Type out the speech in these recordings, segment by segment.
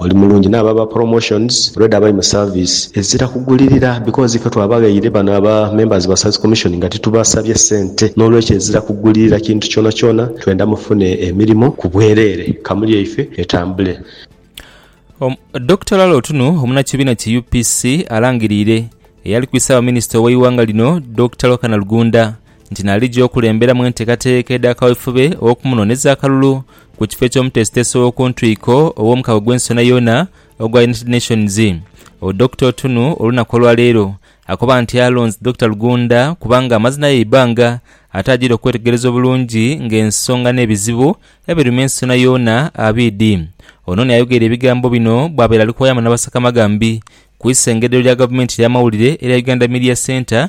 Oli mulungi n'abo aba promotions already abali mu service ezira kugulirira because ife twabaghaire bano aba members ba service commission nga titubasabye sente n'olwekyo ezira kugulirira kintu kyonakyona twenda mufune emirimo ku bwerere kamu yaife etambule. Om Dokita Lalo Otunu omunakibiina ki UPC alangiriire eyali ku Isaabaminister oweighanga lino Dokita Lwakana Lugunda, nti n'alija okulemberamu enteekateeka edha kawefube ow'okumunooneza akalulu ku kifo eky'omuteesiteesi ow'oku ntwiko ow'omukago gw'ensonha yoona ogwa United Nations. O Dokita Otunu olunaku olwaleero akoba nti alonze Dokita Rugunda kubanga amaze naye eibbanga ate ajiire okwetegereza obulungi ng'ensonga n'ebizibu ebiruma ensonha yoona abidhi. Onooni ayogeire ebigambo bino bwabaire ali kuwayamu n'abasaka amagambi ku isengedero lya gavumenti ey'amawulire erya Uganda Media Centre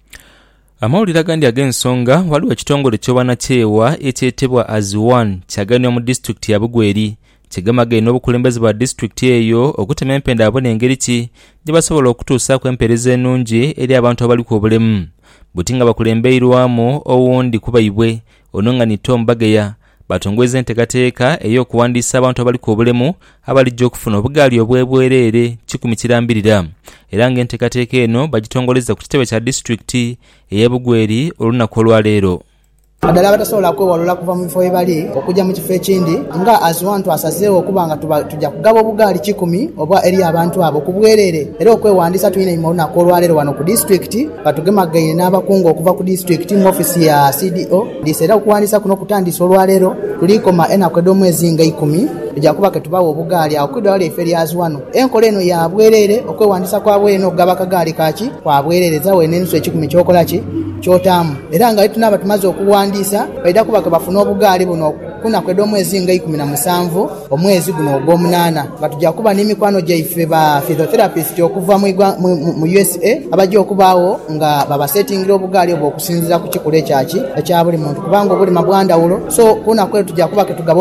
Amawulire agandi ag'ensonga, Ghaligho ekitongole eky'obwanakyewa ekyetebwa As One kyagainibwa mu disitulikiti ya Bugweri kye gemagaine obukulembeze bwa disitulikiti eyo okutema empenda babone ngeri ki gyebasobola okutuusaaku empeereza enungi eri abantu abaliku obulemu buti nga bakulembeirwamu owundi kubaibwe ono nga ni Tom Bageya Baatongweza enteekateeka ey'okuwandiisa abantu abaliku obulemu abalija okufuna obugaali obw'ebwereere kikumi kirambirira era nga enteekateeka eno bagitongolezza ku kitebe kya disitulikiti ey'e Bugweri olunaku olwaleero. Naddala abatasobola kwewalula kuva mu bifo ghebali okugya mu kifo ekindi nga As one twasazeegho okuba nga tugya kugaba obugaali kikumi obwa eri abantu abo ku bwereere era okwewandiisa tulina einhuma olunaku olwaleero wano ku disitulikiti nga tugemagaine n'abakungu okuva ku disitulikiti mu office ya CDO Dhiisa era okuwandiisa kuno kutandiise olwaleero, tuliikoma enaku edh'omwezi nga ikumi. Tuja kuba ke tubaagho obugaali agho ku idwaliro lyaife erya Zwaano. Enkola eno ya bwereere, okwewandiisa kwa bwereere n'okugaba akagaali ka ki kwa bwereere. Zaawo eno enusu ekikumi ky'okola ki ky'otaamu. Era nga bwe tunaaba tumaze okuwandiisa, baidha kuba ke bafuna obugaali buno ku naku edh'omwezi nga ikumi na musanvu. Omwezi guno ogw'omunaana nga tuja kuba ni mikwano gyaife ba physiotherapists okuva mu usa abaja okubaagho nga babasetingira obugaali obwo okusinziira ku kikula ekyaki ekya buli muntu kubanga obulima bwa ndhawulo so kunaku elo tuja kuba ketugaba